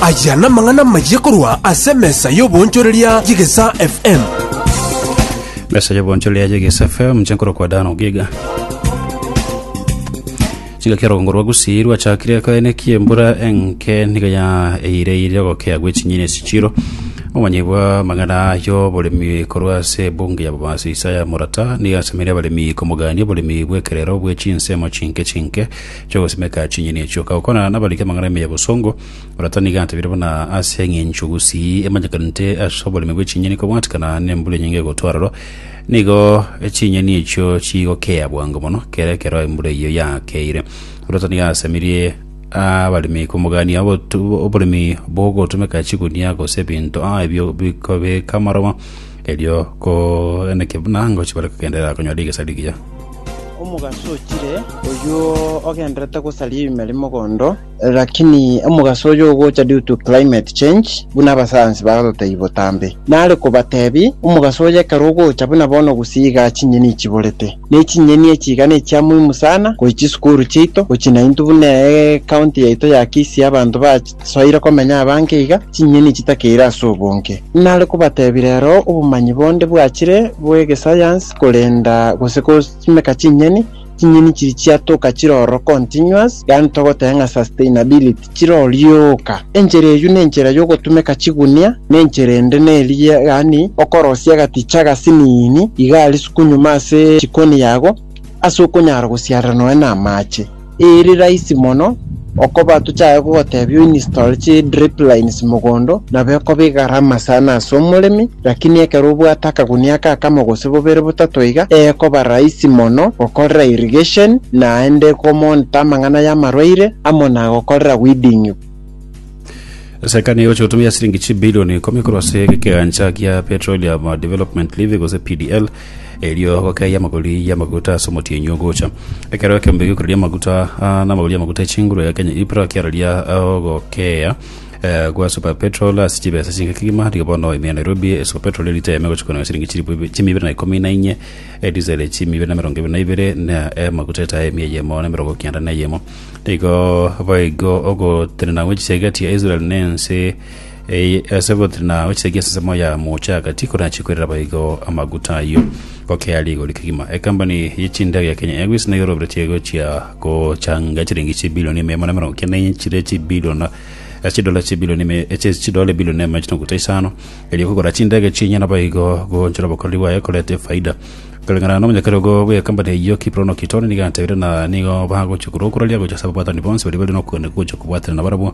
Aya namang'ana amayia korwa ase emesa y'obonchoreria y'Egesa FM. mesa y'obonchoreria y'Egesa FM inche nkorokwa Dan Ogiga chigaki orogongo rwa Gusii rwachakire koenekia embura enke niga ya eireire ogokea gwe chinyeni esichiro omanyi bwa magana y'oboremi korwa ase ebunge ya Bomas Isaya Morata niga asemire abaremi komogania oboremi bw'ekerero bwe chinsemo chinke chinke Chogosimeka chinyeni echio, kagokonana nabariki amang'ana ime ya bosongo, orato nigo atebire buna ase eng'encho gusii emanyekanete ase oboremi bwe chinyeni kobwatikana nembura enyinge egotwa aroro, nigo chinyeni echio chigokea bwango mono kera ekero embura eyio yakeire. Orato nigo asemirie abaremi komogania obotu- oboremi bogotomeka chigunia gose ebinto a ebio bikobeka amaroba, Erio koeneke buna ngochia bare kogenderera konyora rigesario rigiya. Omogaso ochire, oyio ogenderete gosaria ebime ri mogondo, lakini omogaso oyo ogocha due to climate change buna abasayansi bagototebi botambe. Nare kobatebi, omogaso oyo ekero ogocha buna bono gusii igaa chinyeni ichiborete. Ne chinyeni echi iga nechia muhimu sana gochia chisukuru chiaito, gochia nainto buna eye county yaito ya Kisii abanto ba Soire komenya abange iga, chinyeni chitakeire ase obonge. Nare kobatebia rero obomanyi bonde bwachire bw'egesayansi korenda gose kosimeka chinyeni, chinyeni chiri chiatoka chire ororo continuous, yaani togoteba ng'a sustainability, chire orioka. Enchera eyio nenchera y'ogotumeka chigunia, nenchera ende neria yaani okorosia agaticha agasiniini iga risuku nyuma ase chikoni yago, ase okonyara gosiarera nonya na amache. Ere rahisi mono okoba tochaye gogotebia o install chi drip lines mogondo nabo ekoba egarama sana ase omoremi lakini ekero obwate akagunia aka akamo gose bobere botato iga ekoba rahisi mono gokorera irrigation naende ko monitor amang'ana y'amarwaire amo na gokorera weeding. Serikali egochia gotumia siringi chibilioni ikomi korwa ase egekegancha gia Petroleum Development Levy gose PDL Erio gokeya amagori y'amaguta ase omotienyi ogocha. Ekero ekeombe gi'ekorero ri'amaguta ah, n'amagori y'amaguta e chinguru ya Kenya Ipra kiararia ah, ogokeya eh, gwa Super Petrol ase chibesa chinke kegima, rigo bono ime ya Nairobi eh, Super Petrol erite eme gochia kononya siringi chilifu ibi- chimu ibere na ikomi na inye, eh, diesel eh, chimu ibere na emerongo ebere na ibere, na eh, amaguta etae eme eyemo na emerongo kenda na eyemo. Nigo boigo ogotenena gwe chisegeti ya Israel na ense Ee, ase ogotira na ochisagia ensemo ya mocha agati korachi kwerera baigo amaguta ayio gokea rigori kegima. Ekambani ye chindege ya Kenya Airways nayo eroberetie gochia gochanga chiringi chibilioni ime amo na emerongo kenda ne chire chibiliona ase chidola chibilioni ime eche chidola ebilioni na amache na ogote isano erio kogora chindege chinya na baigo goonchora obokoreri bwaye korete efaida. Koreng'ana na omonyakeri ogo bw'ekambani eyio Kiprono Kitoni nigo atebire na nigo bagochia korwa okuraria gocha ase ababwatani bonsi baria bare nokogania gocha kobwatana nabarabwo